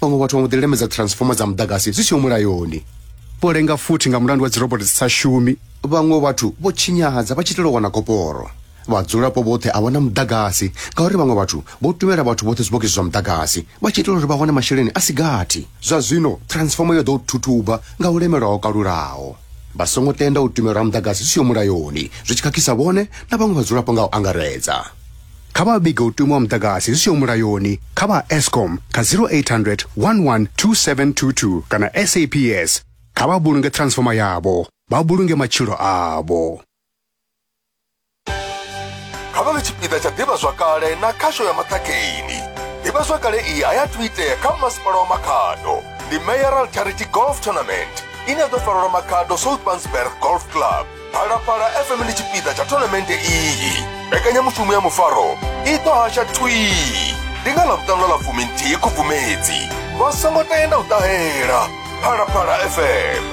vhaṅwe vhathu vha mbo ḓi lemedza transformer dza muḓagasi zwi siho mulayoni vho lenga futhi nga mulandu wa dzirobot dzi sa shumi vhaṅwe vhathu vho tshinyadza vha tshi itela u wana koporo vhadzulapo vhoṱhe a vha na muḓagasi ngauri vhaṅwe vhathu vho tumela vhathu vhoṱhe zwibogisi zwa muḓagasi vha tshi itela uri vha wane masheleni a si gathi zwa zwino transformer yo ḓo u thuthuba nga u lemelwa ho kalulaho vha songo tenda u tumelwa ha muḓagasi zwi siho mulayoni zwi tshi khakhisa vhone na vhaṅwe vhadzulapo nga u angaredza kha vha vhige u tumiwa muḓagasi zwi siho mulayoni kha vha escom kha 0800 112722 kana saps kha vha vhulunge transfoma yavho vha vhulunge matshilo avho kha vha vhe tshipiḓa tsha ḓivhazwakale na khasho ya maṱhakheni ḓivhazwakale iyi a ya thu itea kha masipala wa makhado ndi mayoral charity golf tournament ine ya ḓo farelwa makhado south bansberg golf club phalaphala fm ndi tshipiḓa tsha thonamente iyi mbekanyamushumo ya mufaro i ḓo hasha thwii ndi nga ḽa vhuṱanu ḽa fumi nthihi khubvumedzi vha songo tenda u ṱahela phalaphala fm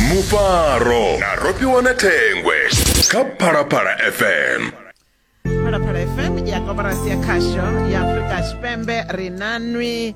mufaro na rofhiwa na thengwe kha phalaphala fm phalaphala fm ya koporasi ya khasho ya afurika tshipembe ri na nwi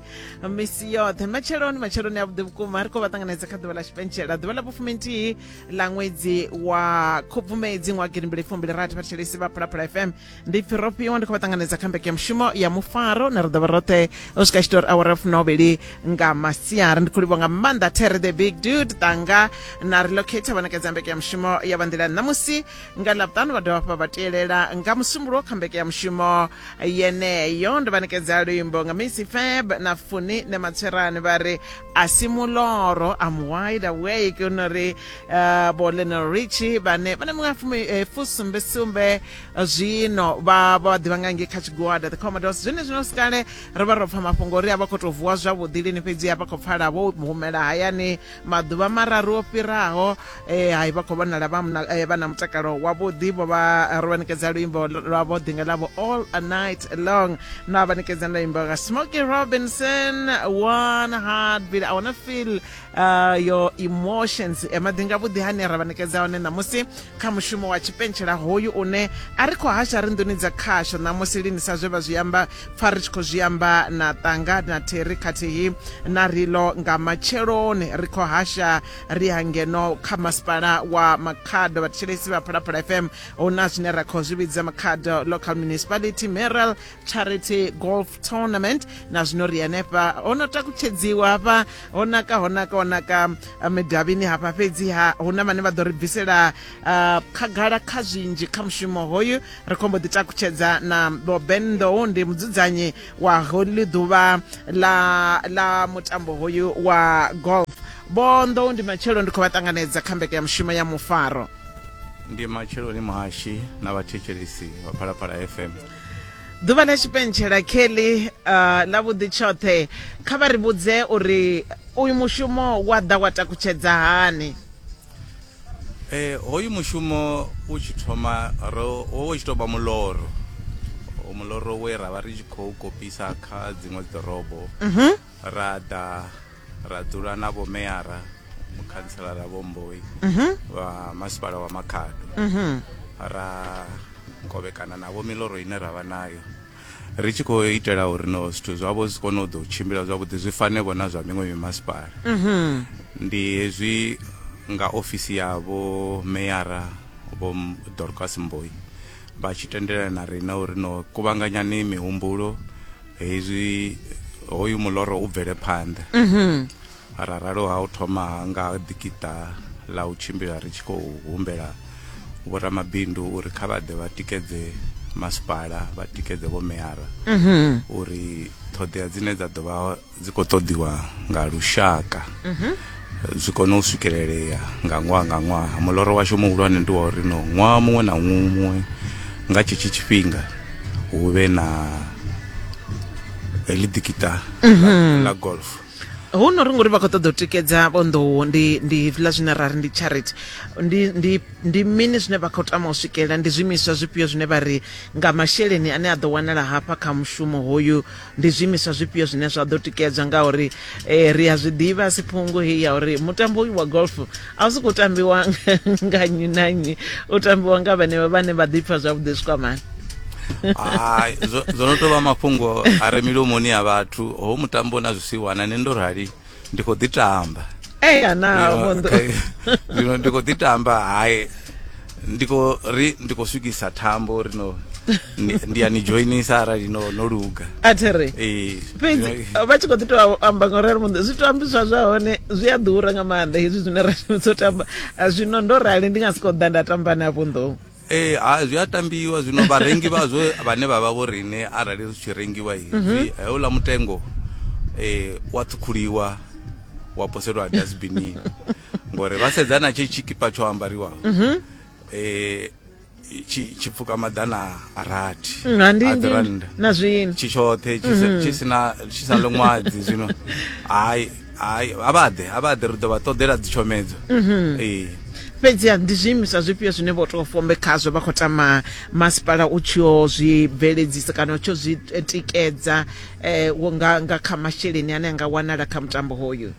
misi yoṱhe matsheloni matsheloni a vhuḓi vhukuma ri khou vha ṱanganedza kha ḓuvha ḽa tshipentshela ḓuvha ḽa vhufuminthihi ḽa ṅwedzi wa khubvumedzi ṅwa gidimbili fumbili rathi vhathetshelesi vha phalaphala fm ndi pfi ro fhiwa ndi khou vha ṱanganedza kha mbeke ya mushumo ya mufaro na ri ḓo vha roṱhe u swika tshitori awara funovhili nga masiari ndi khou livha nga maanḓa terry the big dude tanga na relocate vha ṋekedza mbeke ya mushumo ya vha nḓila ṋamusi nga ḽavhutanu vha dovha hafha vha tielela nga musumbulo kha mbeke ya mushumo yeneyo ndo vha nekedza luimbo nga misi feb na funi ne matswerani vha ri a si muloro am wide awake u no ri uh, bo lenel richi vhane vha na miṅwaha fumi- eh, fusumbesumbe zwino vha vha ḓivha nga ngei kha tshigwada the commodores zwine zwino sikale ri vha ro pfa mafhungo uri a vha khou tou vuwa zwavhuḓi lini fhedzi a vha khou pfala vho humela hayani maḓuvha mararu o fhiraho eh, hai vha khou vhonala vha eh, na mutakalo wavhuḓi vho vha eh, ro vha ṋekedza luimbo lwavho ḓinga ḽavho all a night long na vha ṋekedza luimbo nga smoky robinson one heart beat i wanna feel uh, your emotions maḓinga vhuḓi hane ra vha ṋekedza hone ṋamusi kha mushumo wa tshipentshela hoyu une a ri khou hasha ri nḓuni dza khasho ṋamusi lini sa zwe vha zwi amba pfa ri tshi khou zwi amba na ṱanga na theri khathihi na rilo nga matsheloni ri khou hasha ri ha ngeno kha masipala wa makhado vhathetshelesi vha phalaphala fm hu na zwine ra khou zwi vhidza makhado local municipality meral charity golf tournament na zwino ri hanefha ho no takutshedziwa hafha ho naka ho naka ho naka eh, midavhini hafha fhedzi ha hu na vhane vha ḓo ri bvisela uh, khagala kha zwinzhi kha mushumo hoyu ri khombo ḓi takutshedza na boben nḓou ndi mudzudzanyi wa holy ḓuvha la, la mutambo hoyu wa golf bonḓou ndi matshelo ndi khou vha ṱanganedza kha mbeke ya mushumo ya mufaro ndi matsheloni muhashi na vhathetshelesi vha phalaphala fm ḓuvha ḽa tshipentshela kelly uh, ḽa vhuḓi tshoṱhe kha vha ri vhudze uri uyu mushumo wa ḓa wa takutshedza hani eh hoyu mushumo u tshi thoma ro wo tshi tou vha muloro muloro we ra vha ri tshi khou kopisa kha dziṅwe ḓorobo mhm. ra ḓa ra dzula na vho meyara mukhantselara vho mboi mhm. vha masipala wa makhado mhm. ra kovhekana navho miloro ine ra vha nayo ri tshi khou itela uri no zwithu zwavho zwi kone u ḓo tshimbila zwavhuḓi zwi fanevho na zwa miṅwe mimasipala mhm. ndi hezwi nga ofisi ya vho meyara vho dorcas mboi vha tshi tendelana na riṋe uri no kuvhanganyani mihumbulo hezwi hoyu muloro u bvele phanḓa mhm. ra ralo ha u thoma nga ḓikiṱa ḽa u tshimbila ri tshi khou humbela vhoramabindu uri kha vha ḓe vha tikedze masipala vha tikedze vho meara mhm. uri ṱhoḓea dzine dza ḓo vha dzi khou ṱoḓiwa nga lushaka mhm. zwi kone u swikelelea nga ṅwaha nga ṅwaha muloro washu muhulwane ndi wa uri no ṅwaha muṅwe na muṅwe nga tshetsho tshifhinga hu vhe na heḽi dikita mhm. la golf hu no ri ngori vha khou ṱoḓa u tikedza vhonḓowo ndi ndi hezwiḽa zwine ra ri ndi charity ndi ndi ndi mini zwine vha khou tama u swikelela ndi zwiimiswa zwifhio zwine vha ri nga masheleni ane a ḓo wanala hafha kha mushumo hoyu ndi zwiimiswa zwifhio zwine zwa ḓo tikedzwa ngauri eh, ri a zwi ḓivha siphungu heyi ya uri mutambo uyu wa golf a u si khou tambiwa nga nnyi na nnyi u tambiwa nga vhenevho vhane vha ḓipfa zwavhuḓi zwikwamani hai zwo no tou vha mafhungo a re milomoni ya vhathu ho mutambo na zwisiwana ne ndo rali ndi khou ḓi tamba eya na vhonḓo zwino ndi khou ḓi tamba hayi ndi khou ri ndi khou swikisa thambo ri no ndi ya ni joinisa arali no no luga a thi ri ee fhedzi vha tshi khou ḓi tou amba nga uri muṋe zwi tou ambiswa zwa hone zwi a ḓura nga maanḓa hezwi zwine ra shumisa u tamba zwino ndo rali ndi nga si khou ḓa nda tamba na vhunḓou ee eh, ha zwi a tambiwa zwino vharengi vhazwo vhane vha vha vho rine arali zwi tshi rengiwa hezwi mhm. heuḽa mutengo um eh, wa ṱhukhuliwa wa poselwa dasbinini ngori vha sedza na tshi tshikipa tsho ambariwa um mhm. eh, tshi pfuka maḓana a rathi mm, aḓirannda tshi tshoṱhe tshi mhm. sina tshi sa ḽo ṅwadzi zwino hayi hai a vha ḓe a vha ḓe ri ḓo vha ṱoḓela dzitshomedzo mhm. ee fhedziha ndi zwiimiswa zwifhio zwine vho tou fombe khazwo vha khou tama masipala u tshi o zwi bveledzisa kana u tshi o zwi eh, tikedza um nga nga kha masheleni ane a nga wanala kha mutambo hoyu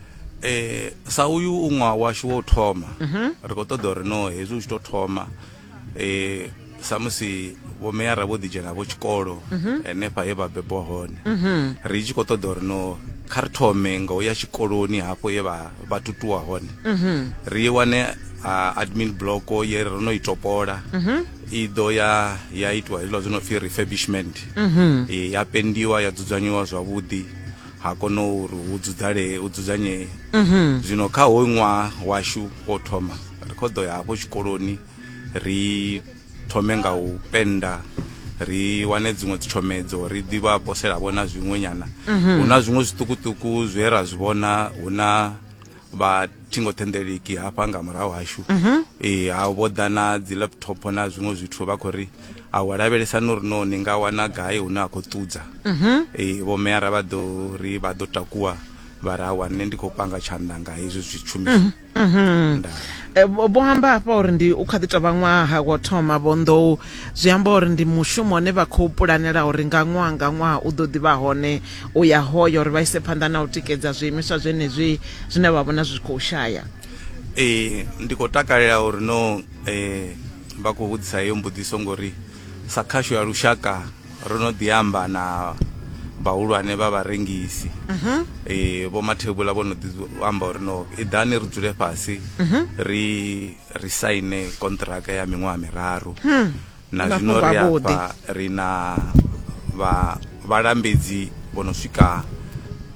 um sa uyu u ṅwaha washu wa u thoma mhm. ri khou ṱoḓa uri no hezwi u tshi tou thoma eh samusi vho meyara vho ḓidzhena vho tshikolo henefha he vha bebwa hone ri tshi khou ṱoḓa uri no kha ri thome nga u ya tshikoloni hafho ye vha vha tutuwa hone ri wane ah, admin block ye ro no i topola i ḓo ya ya itiwa hezwiḽa zwi no pfi refurbishment Eh, ya pendiwa ya dzudzanyiwa zwavhuḓi ha kono uri hu dzudzalee hu dzudzanyee zwino kha hoyu ṅwaha washu wo thoma ri khou ḓo ya hafho tshikoloni ri thome nga u penda ri wane dziṅwe dzitshomedzo ri ḓi vha posela vhona zwiṅwe nyana hu na zwiṅwe zwiṱukuṱuku zwe ra zwi vhona hu na vha thingothendeleki hafha nga murahu hashu mhm. ee ha vho ḓa na dzi laptop na zwiṅwe zwithu vha khou ri a wa lavhelesa no ri no ni nga wana gai hune a khou ṱudza mhm. ee vho meara vha ḓo ri vha ḓo takuwa vha ra wa nṋe ndi khou panga tshanḓa nga hezwi zwitshumiso mhm, eh, vho amba hafha uri ndi u kha ḓi tovha ṅwaha wo thoma vho nḓou zwi amba uri ndi mushumo une vha khou pulanela uri nga ṅwaha nga ṅwaha u ḓo ḓivha hone u ya hoyo uri vha ise phanḓa na u tikedza zwiimiswa zwenezwi zwine vha vhona zwi khou shaya ee ndi khou takalela uri no eh, vha khou vhudzisa heyo mbudziso ngori sa khasho ya lushaka ro no ḓi amba na vhahulwane vha vharengisi mhm. eh, vho mathebula vho no ḓi amba uri no iḓani ri dzule fhasi mhm. ri ri saine kontraka ya miṅwaha miraru hmm. na zwino ri afha ri na vha vhalambedzi vho no swika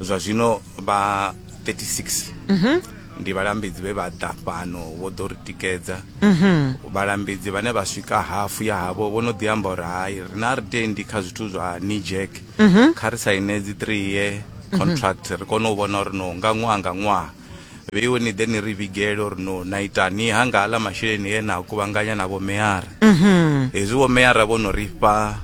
zwa zwino vha 36 mhm. ndi vhalambedzi vhe vha ḓa fhano vho ḓo ri tikedza mhm. vhalambedzi vhane vha swika hafu ya havho vho no ḓi amba uri hai ri na ri tendi kha zwithu zwa nijek mhm. kha ri saine dzi three year contract ri kone u vhona uri no nga ṅwaha nga ṅwaha vheiwe ni ḓe ni ri vhigele uri no na itani ha nga aḽa masheleni e na kuvhanganya na vhomeyara mhm. hezwi vhomeyara vho no ri fha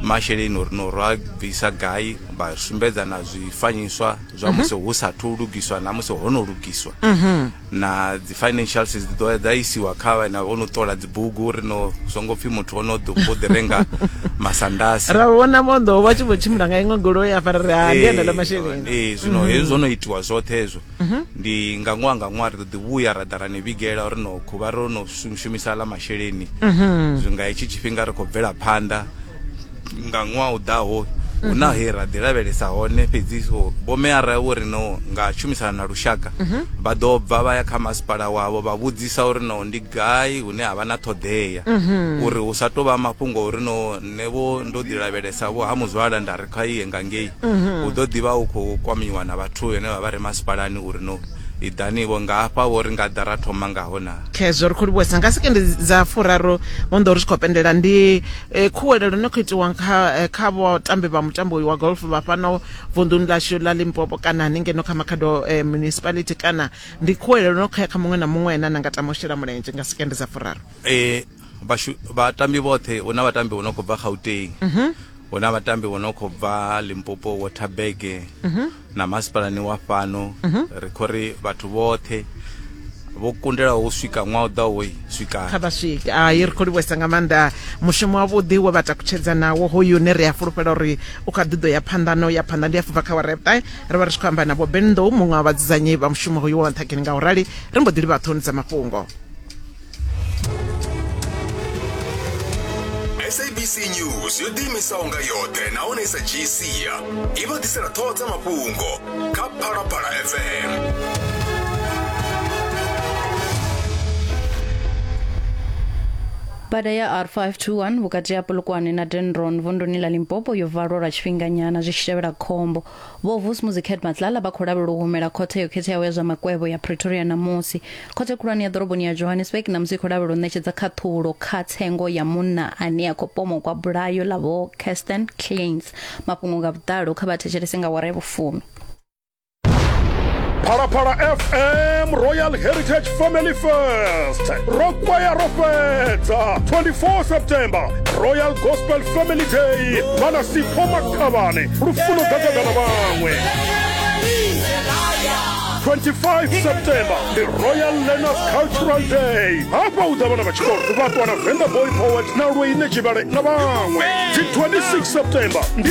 masheleni uri no rwa bvisa gai vha sumbedza na zwifanyiswa zwa mhm. musi hu sathu lugiswa na musi ho no lugiswa mhm. na dzi financials dzi ḓo dza isiwa kha vhana vho no ṱola bugu ri no zwo ngo pfhi muthu o no ḓi vho ḓi renga masandasi ra vhona mondo vha tshi vho tshimbila nga iṅwe goloi ya fara ri ha ndi enda la masheleni ee zwino mhm. hezwo no itiwa zwoṱhe hezwo mhm. ndi nga ṅwaha nga ṅwaha ri ḓo ḓi vhuya ra ḓa ra ni vhigela uri no khuvha ro no shumisa la masheleni mhm. zwi nga hetshi tshifhinga ri khou bvela phanḓa nga ṅwaha u ḓaho hu na he ra ḓi lavhelesa hone fhedzi so vhomeara vho ri no nga tshumisana na lushaka vha ḓo bva vha ya kha masipala wavho vha vhudzisa uri no ndi gai hune ha vha na ṱhoḓea uri hu sa tou vha mafhungo uri no nṋe vho ndo ḓi lavhelesa vho ha muzwala nda ri kha iye nga ngei hu ḓo ḓi vha hu khou kwamiwa na vhathu vhene vha vha re masipalani uri no Iḓani-vho nga hafha-vho, ri nga ḓa ra thoma ngaho na. Khezwo ri khou livhuwesa nga sekendi dza furaru vho nḓou ri tshi khou pendela ndi eh, khuwelelo no khou itiwa kha eh, kha vhatambi vha mutambo uyu wa golf vha fhano vunḓuni ḽashu ḽa Limpopo kana haningeno kha Makhado eh, municipality kana ndi khuwelelo no khou ya kha muṅwe na muṅwe ane na nga tama u shela mulenzhe nga sekendi dza furaru. Eh, vhatambi vhoṱhe hu na vhatambi vho no khou bva gauteng mhm. hu na vhatambi vho no khou bva limpopo waterberg mhm. na masipalani wa fhano mhm. ri khou ri vhathu vhoṱhe vho kundelaho u swika ṅwaha u ḓaho swika kha vha swike hai ri khou livhuwesa nga maanḓa mushumo wavhuḓi we vha takutshedza nawo hoyu une ri a fulufhela uri u kha ḓiḓo ya phanḓa na u ya phanḓa ndi a fubva kha warepta ri vha ri tshi khou amba na vho benḓou muṅwe wa vhadzudzanyi vha mushumo hoyu wa nṱhageni nga u rali ri mbo ḓi livha ṱhoni dza mafhungo sabc news yo ḓiimisaho nga yoṱhe nahone i sa dzhii sia i vha ḓisela ṱhoho dza mafhungo kha phalaphala fm bada ya r521 vhukati ha polokwane na denron vunduni la limpopo yo valwa lwa tshifhinganyana zwi tshi tevhela khombo Vho Vusmuzi Kerdmatlala vha khou lavhelelwa u humela khothe yo khetheaho ya zwa makwevho ya Pretoria ṋamusi. Khothe khulwane ya ḓoroboni ya Johannesburg ṋamusi i khou lavhelelwa u ṋetshedza khaṱhulo kha tsengo ya munna ane a khou pomokwa bulayo ḽa Vho Kirsten Kleins. Mafhungo nga vhuḓalo kha vha thetshelese nga awara ya vhufumi. Phalaphala FM Royal Heritage Family Fest ro kwaya ro fhedza 24 September Royal Gospel Family Day vha na Sipho khavhane lufuno gagagana vhaṅwe 25 september ndi royal learners cultural day hafha u ḓa vhana vha tshikolo vha ṱwa na venda boy poet na lweine tshivhale na vhaṅwe dzi 26 september ndi